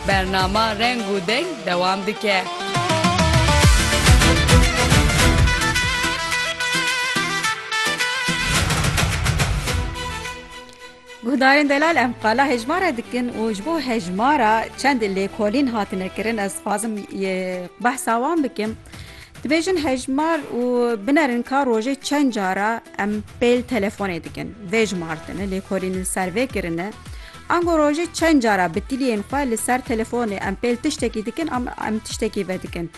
Bernama Reng û Deng dewam dike. Guhdarên delal em qala hejmara dikin û ji bo hejmara çend lêkolîn hatine kirin ez xwazim behsa wan bikim. Dibêjin hejmar û binerin ka rojê çend cara em pêl telefonê dikin. Vê jimartine lêkolînin ser vê kirine. Ango rojê çend cara bi tiliyên xwe li ser telefonê em pêl tiştekî dikin an em tiştekî vedikin.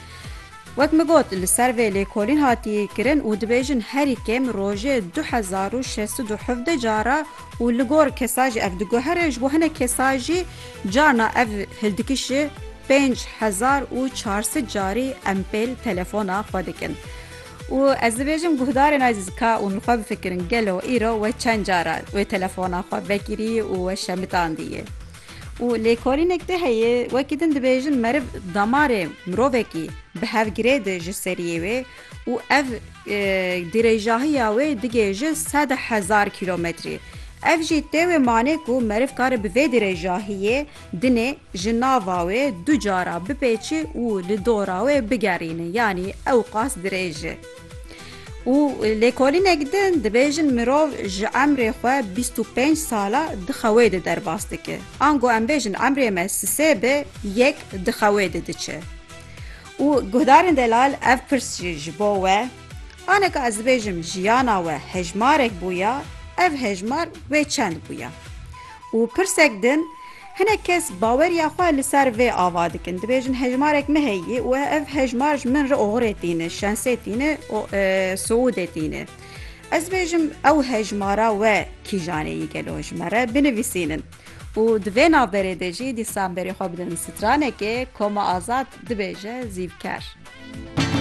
Wek min got li ser vê lêkolîn hatiye kirin û dibêjin herî kêm rojê du hezar û şeş sed û hevdeh cara û li gor kesan jî ev diguhere ji bo hinek kesan jî carna ev hildikiş ji pênc hezar û çar sed carî em pêl telefona xwe dikin. Û ez dibêjim guhdarên Aziz ka ûn li xwe bifikirin gelo îro we çend cara wê telefona xwe vekirî û we şemitandîyê. Û lêkolînek de heye wekî din dibêjin meriv damarê mirovekî bi hev girê di ji seriyê wê û ev dirêjahiya wê digê ji sed hezar kîlometrî. Ev jî tê wê manê ku meriv kare bi vê dirêjahiyê Dinê ji nava wê du cara bipêçi û li dora wê bigerîne yanî ewqas dirêj e. Û lêkolînek din dibêjin mirov ji emrê xwe bîst û pênc sala di xewê de derbas dike. Ango em bêjin emrê me sisê be yek di xewê de diçe. Û guhdarên delal ev pirs jî ji bo we aneka ez dibêjim jiyana we hejmarek bûya ev hejmar wê çend bûya? Û pirsek din, hinek kes baweriya xwe li ser vê ava dikin, dibêjin hejmarek me heye û ev hejmar ji min re oxirê tîne, şensê tîne û sûûdê tîne. Ez dibêjim ew hejmara we kîjan ê yî gelo ji me re binivîsînin. Û di vê navberê de jî dîsan berê xwe bidin stranekê, Koma Azad dibêje zîvker.